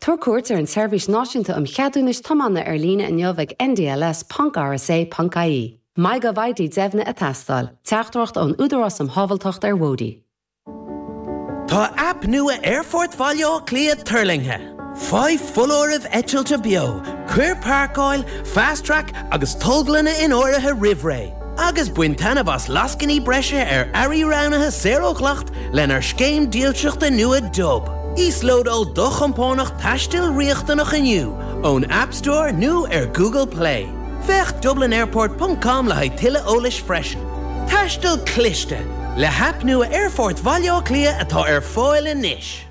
Tabhair cuairt ar an tSeirbhís Náisiúnta um Cheadúnais Tiomána ar líne inniu ag ndls.rsa.ie. MyGovID deimhnithe ag teastáil, Teachtaireacht ón Údarás um Shábháilteacht ar Bhóithre. Tá aip nua Aerfort Bhaile Átha Cliath tuirlingthe! Faigh foláirimh eitilte beo, cuir páirceáil, Fast Track agus tolglanna in áirithe roimh ré. agus bain taitneamh as lascainí breise ar earraí roghnaithe saor ó dhleacht lenár scéim dílseachta nua Dub. Íoslódáil do chompánach taistil riachtanach inniu ón App Store nó ar Google Play. Féach dublinairport ponc com le haghaidh tuilleadh eolais freisin. Taisteal Cliste, le haip nua Aerfort Bhaile Átha Cliath atá ar fáil anois.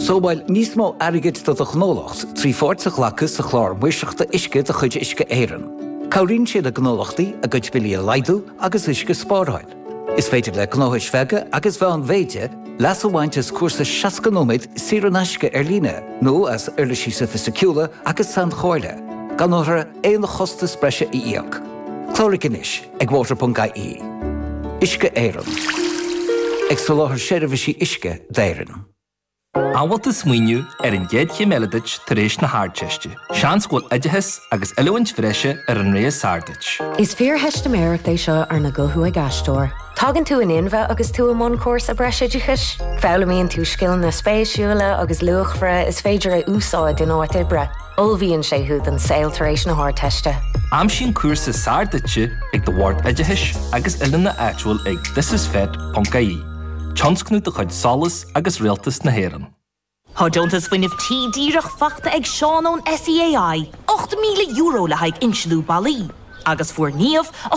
Sábháil níos mó airgid do do ghnólacht trí pháirt a ghlacadh sa Chlár Maoirseachta Uisce de chuid Uisce Éireann. Cabhraíonn sé le gnólachtaí a gcuid billí a laghdú agus uisce a spáráil. Is féidir le gnóthais bheaga agus mheánmhéide leas a bhaint as cúrsa 60 nóiméad saor in aisce ar líne nó as uirlisí sofaisticiúla agus sainchomhairle gan aon chostas breise a íoc. Cláraigh anois ag water.ie. Uisce Éireann. Ag soláthar seirbhísí uisce d'Éirinn. An bhfuil tú ag smaoineamh ar an gcéad chéim eile duit tar éis na hArdteiste? Seans go bhfuil oideachas agus oiliúint bhreise ar an rogha is fearr duit. Is fíortheistiméireacht é seo arna guthú ag aisteoir. Tagann tú in inmhe agus tú i mbun cúrsa breisoideachais. Foghlaimíonn tú scileanna spéisiúla agus luachmhara is féidir a úsáid in áit oibre. Ullmhaíonn sé thú don saol tar éis na hArdteiste. Aimsigh an cúrsa is fearr duit ag do Bhord Oideachais agus Oiliúna áitiúil ag thisisfet.ie, tionscnamh de chuid SOLAS agus Rialtas na hÉireann. Tá Deontas Fuinnimh Tí díreach faighte ag Seán ón SEAI, €8,000 le haghaidh insliú ballaí, agus fuair Niamh, a